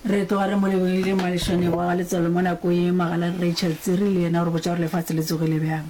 re tloga re mo lebogile moagišani wa ga letswalo mo nako ye magala rachel tsiri le yena gore botsa gore lefatshe le tsogile bjang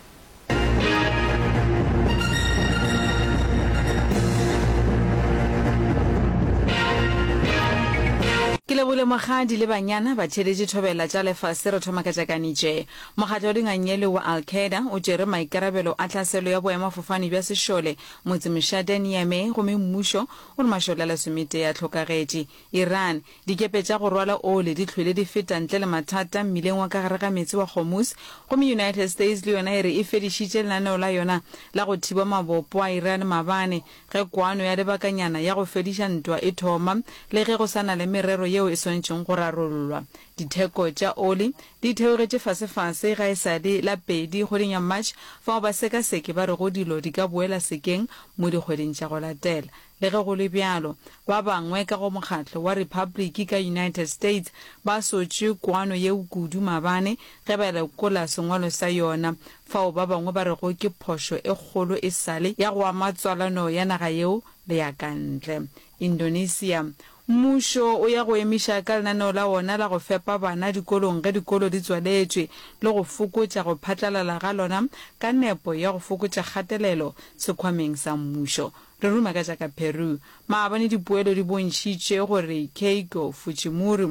ke lebogile mogadi le banyana ba theeletše thobela tša lefase re thoma ka tšakanitše mokgatlo wa dingangele wa al qaeda o tšere maikarabelo a tlhaselo ya boemafofane bja sešole motsemošate niamey gomme mmušo O re mašole a lesometee a hlokagetše. Iran, Dikepe tša go rwala oli di hlwele di feta ntle le mathata mmileng wa ka gare ga meetse wa Hormuz, gomme United States le yona e re e fedišitše lenaneo la yona la go thiba mabopo a Iran mabane ge kwano ya lebakanyana ya go fediša ntwa e thoma le ge go sa na le merero yeo e swanetšego go rarollwa. Ditheko tša oli di theogetše fasefase ga e sa le la pedi kgweding ya March, fao basekaseki ba rego dilo di ka boela sekeng mo dikgweding tša go latela. Le ge go le bjalo, ba bangwe ka go mokgatlo wa Repabliki ka United States ba sotše kwano yeo kudu maabane ge ba lekola sengwalo sa yona, fao ba bangwe ba rego ke phošo e kgolo e sa le ya go ama tswalano ya naga yeo le ya ka ntle. Indonesia, Mmušo o ya go emiša ka lenaneo la wona la go fepa bana dikolong ge dikolo di tswaletšwe le go fokotša go phatlalala ga lona ka nepo ya go fokotša kgatelelo sekhwameng sa mmušo. Re ruma ka tša ka Peru. Maabane dipoelo di bontšhitše gore Keiko Fujimori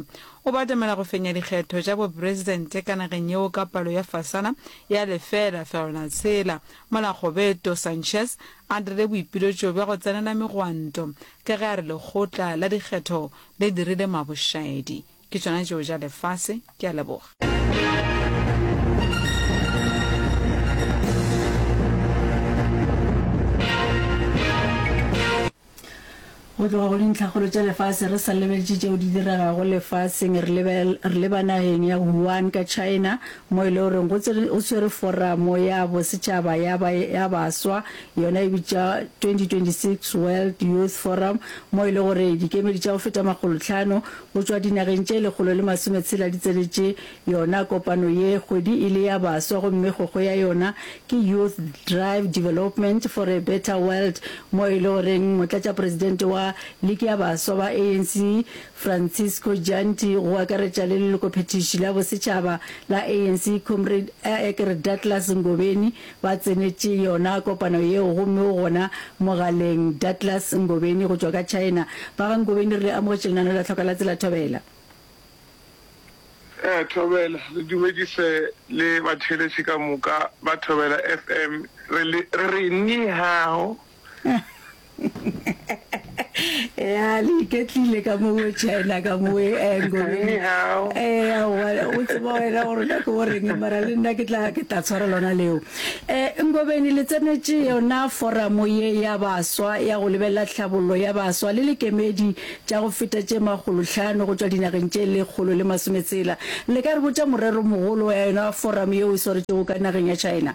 o batamela go fenya dikgetho tša bopresidente ka nageng yeo ka palo ya fasana ya lefeela fegelwana tshela mola Goberto Sanchez a dirile boipiletšo bja go tsenela megwanto Ka ge a re lekgotla la dikgetho le dirile mabošaedi, ke tšona tšeo ja lefase. Ke a leboga. Go tloga go dintlhakgolo tša lefase, re sa lebeletše tšeo di diregago lefaseng, re lebe, re leba nageng ya Wuhan ka China, mo e le goreng go tsere, go swere foramo ya bosetšhaba ya ba, ya baswa Yona e bitša 2026 World Youth Forum mo e le gore dikemedi tša go feta makgolo tlhano go tšwa dinageng tše lekgolo le masome tshela di tsenetše yona kopano ye. Kgwedi e le ya baswa gomme kgokgo ya yona ke Youth Drive Development for a Better World mo e le goreng Motlatšapresidente wa Liki ya Baswa ba ANC Francisco Janti go akaretša le lelokophethiši la bosetšhaba la ANC Comrade Aekr Douglas Ngobeni Ba tsenetše yona kopano yeo gomme o gona mogaleng. Douglas Ngobeni go tšwa ka China. Ba ga Ngobeni re le amogetše lenano la Tlhoka la Tsela Thobela. Ee, Thobela. Re dumedise le batheeletši ka moka ba Thobela FM. Re re, Ni hao. ya le iketlile ka mowe china ka mowe eh, ngoleng eh, o tseba wena gore ka ke goreng mara le nna ke tla tshwara lona leo um ngobeni le tsenetse yona foramo ye ya baswa ya go lebelela tlhabololo ya baswa le lekemedi tša go feta tše magolotlhano go tswa dinageng tše lekgolo le masometsela le ka re botša morero mogolo ya yona foramo yeo e swaretšego ka nageng ya china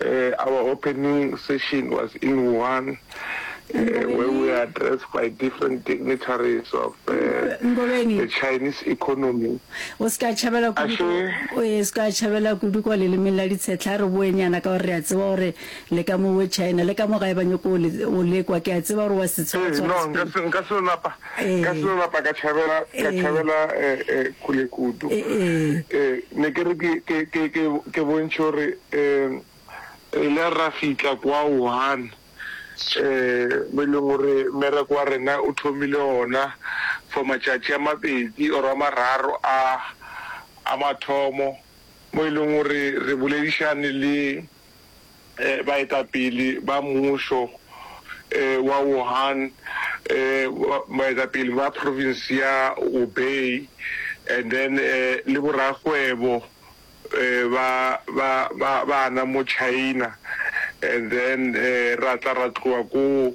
Our opening session was in Wuhan where we were addressed by different dignitaries of the Chinese economy. O se ka tšhabela kudu, o e se ka tšhabela kudu kwa lelemeng la ditshetla re boenyana ka gore re a tseba gore le ka mo we China le ka mo gae ba nyoko o lekwa ke a tseba gore wa se tseba tswa. No, nka se nka se lapa. ka selo lapa ka tšhabela ka tšhabela kule kudu ne ke re ke bontšhe gore re ile ra fitlha kwa one mo e leng gore mmereko wa rena o thomile ona for matšatši a mabedi or a mararo a a mathomo mo e leng gore re boledišane le baetapele ba mmušo wa Wuhan, baetapele ba province ya Hubei and then le borakgwebo ba bana mo China and then ra tla ra tloga koo.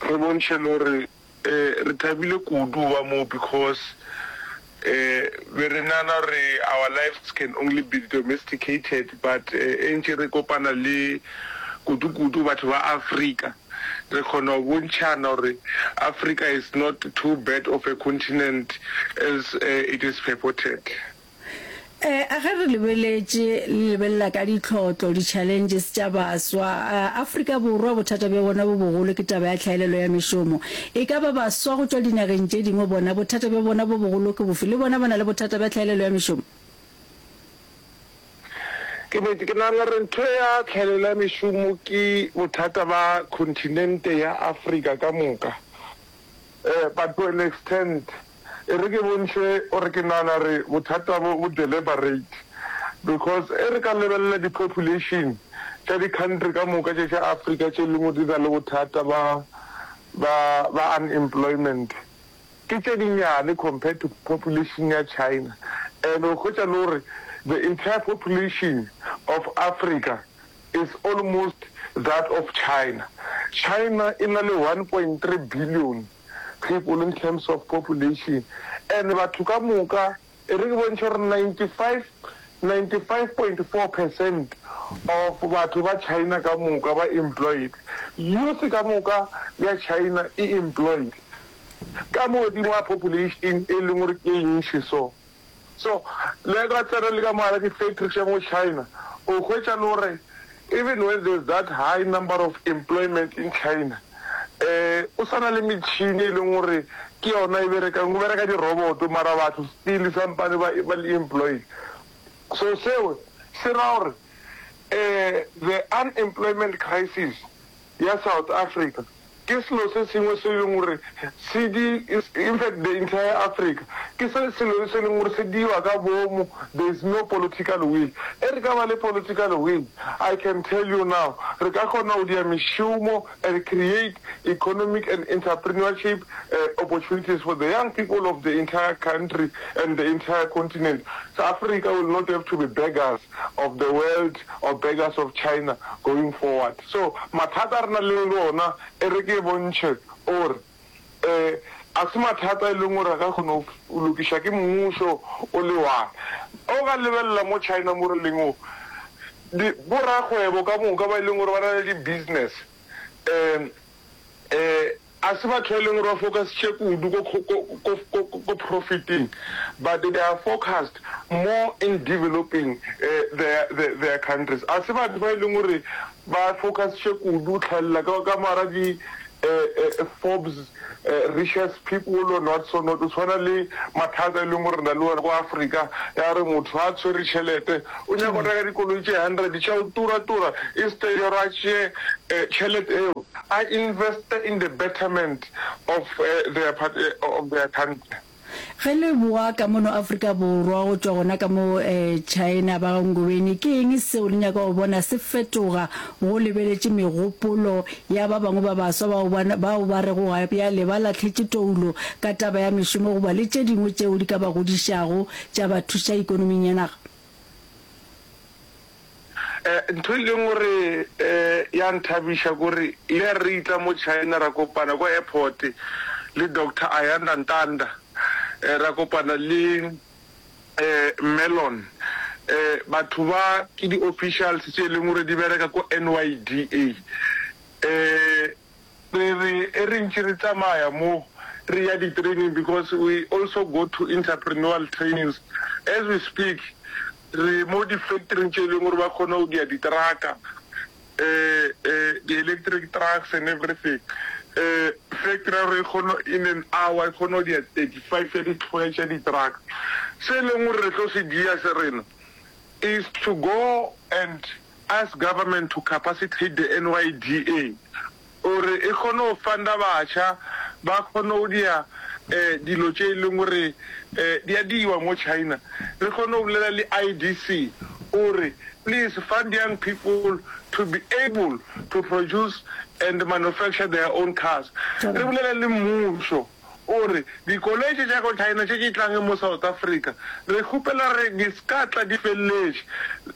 Re bontšhe lore re thabile kudu go ba mo because be re nana gore our lives can only be domesticated but e ntše re kopana le kudu kudu batho ba Africa re kgona go bontšhana gore Africa is not too bad of a continent as it is purported. E, a ge re lebeletše le lebelela ka ditlhotlo, di-challenges tša baswa, a, Afrika Borwa bothata bja bona bo bogolo ke taba ya tlhaelelo ya mešomo. E ka ba baswa go tšwa dinageng tše dingwe bona bothata bja bona bo bogolo ke bofe? Le bona ba na le bothata bja tlhaelelo ya mešomo? Ke nete, ke nagana gore ntho ya tlhaelelo ya mešomo ke bothata ba continente ya Afrika ka moka. Eh, but to an extent. E re ke bontšhe gore ke nagana re bothata bo bo deliberate because e re ka lebelela di-population tša di-country ka moka tše tša Africa tše lingwe di na le bothata ba, ba, ba unemployment, ke tše dinyane compared to population ya China. And o hwetša le gore the entire population of Africa is almost that of China. China e na le one point three billion people in terms of population and batho ka moka e re ke bontšhe gore ninety five, ninety five point four percent of batho ba China ka moka ba employed. Youth ka moka ya China e employed ka mo godimo ga population e leng gore ke e ntši so. So, le ka tsena le ka mo gare ke factory tša mo China, o hwetša le gore even when there is that high number of employment in China, um o sa na le metšhini e leng gore ke yona e berekang, go bereka di-robot mara batho still sampane ba ba le employed. So seo se ra gore um the unemployment crisis ya South Africa ke selo se sengwe se e leng gore se di, in fact the entire Africa, ke se selo se e leng gore se diwa ka boomo, there is no political will. E re ka ba le political will, I can tell you now, re ka kgona go dia mešomo and create economic and entrepreneurship opportunities for the young people of the entire country and the entire continent. Africa will not have to be beggars. of the world or beggars of China going forward so mathata a re na leng le ona e re ke bontšhe or e a se mathata e leng gore a ka kgono lokiša ke mmušo o le one o ka lebelela mo China mo re leng o di bo rakgwebo ka moka ba e leng gore ba na le di business e A se batho ba e leng gore ba focusitše kudu ko profiting, but they are focused more in developing their countries. A se batho ba e leng gore ba focusitše kudu tlhalela ka moara di Forbes richest people and what so not. O tshwana le mathata e leng gore re na le ona ko Africa, ya re motho ha a tshwere tšhelete O nyaka go reka dikoloi tše hundred tša go tura tura instead ya gore a tšee tšhelete eo a investe in the betterment of their of their country. Ge le boa ka mono Afrika Borwa go tšwa gona ka mo China ba ga Ngobeni, ke eng seo le nyaka go bona se fetoga go lebeletše megopolo ya ba bangwe ba baswa bao ba bao ba rego ga bjale ba lahletše toulo ka taba ya mešomo goba le tše dingwe tšeo di ka ba godišago tša ba thuša ikonoming ya naga? Ntho e leng gore ya nthabiša ke gore le ha re itla mo China ra kopana kwa airport le Doctor Ayanda Ntanda, ra kopana le Mellon. Batho ba ke di-officials tše e leng gore di bereka ko NYDA. Re re e re ntše re tsamaya mo re ya di training because we also go to interprenual trainings as we speak re mo di factory tše e leng gore ba kgona go dia di traka um di electric trucks and everything um factory ya rona e kgona in an hour e kgona go dia thirty five ya di tlhoe tša di truck. Se e leng gore re tlo se dia se rena is to go and Ask government to capacitate the NYDA gore e kgone go funda batšha ba kgone go dia dilo tše e leng gore di a diwa mo China. Re kgone go bolela le IDC gore please fund young people to be able to produce and manufacture their own cars. Re bolela le mmušo. O re, Dikoloi tše tša go China tše di tlang mo South Africa, re kgopela gore di se ka tla di feleletše,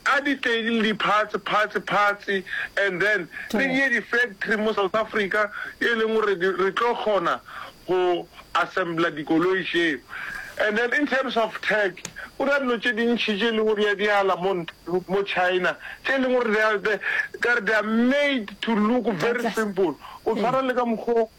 a di tle di le di parts, parts, parts, and then re di ye di factory mo South Africa e leng gore re tlo kgona go assembler dikoloi tšeo. And then in terms of tech, go na le dilo tše dintši tše e lego gore di a diala mo mo China tše e leng gore they are they are made to look very simple, go tshwana le ka mokgwa o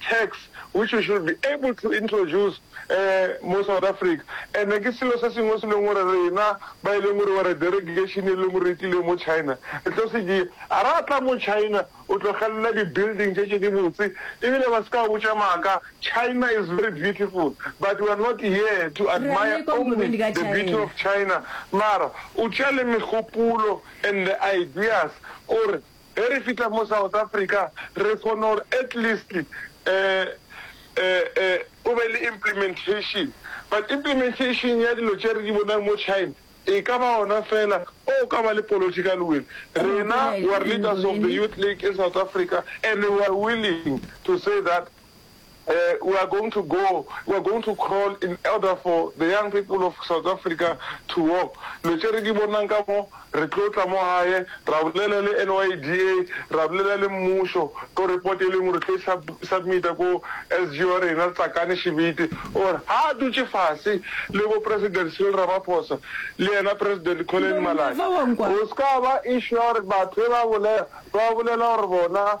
tax which we should be able to introduce mo South Africa and ke selo se sengwe se leng gore rena ba e leng gore were delegation e leng gore e tlile mo China re tlo se dia a re a tla mo China o tlogelela di building tše tše di botse ebile ba se ka botša maaka China is very beautiful but we are not here to admire only the beauty of China mara o tša le megopolo and the ideas gore Ge re fihla mo South Africa re kgone gore at least go be le implementation but implementation ya dilo tše re di bonang mo China e ka ba gona fela o ka ba le political will. Rena we are leaders of the youth league in South Africa and we are willing to say that We are going to go, we are going to crawl in order for the young people of South Africa to walk. Lo tše re di bonang ka mo, re tlo tla mo gae, ra bolela le NYDA, ra bolela le mmušo, ko report e lengwe re tlo e submita ko SG wa rena Tsakane Shibiti, gore ha a dutše fase le bo President Cyril Ramaphosa le yena President Collen Malala, go ska ba issue ya gore batho be ba bolela, ba bolela gore bona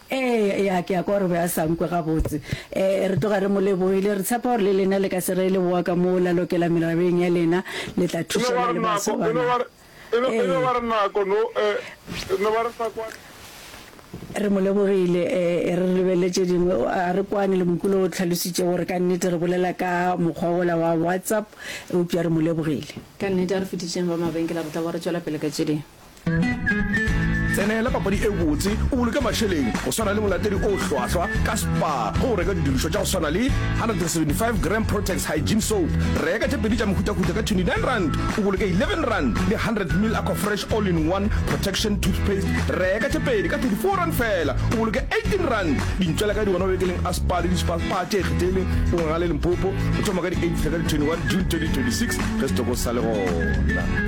Ee, ya, ke a kwa gore o be a sa nkwe gabotse. Ee, re tloga re mo lebohile. Re tshepa gore le lena le ka se reye leboa ka mo la lokela merabeng ya lena, le tla thušana le baswa ba na. Ee. Re mo lebogile. Ee, re re lebelele tše dingwe. Ga re kwane le Mokule o tlhalositše gore ka nnete re bolela ka mokgwa wola wa WhatsApp, eupša re mo lebogile. Ka nnete, a re fetišeng ba mabenkele, re tla boa re tšwela pele ka tše dingwe. tsenela papadi e botse o boloke mašeleng go swana le molatedi o hlwahlwa ka spa go go reka didirišwa tša go swana le 175 gram protex hygiene soap reka tše pedi tša mehutahuta ka 29 rand o boloke 11 rand le 100 mil aqua fresh all in one protection toothpaste reka tše pedi ka 34 rand fela o boloke 18 rand dintšwela ka di gona bekeleng a spa le dispa spa tše kgethele o ngale limpopo go thoma ka di 8 fela ka di 21 june 2026 ge setoko sa le gona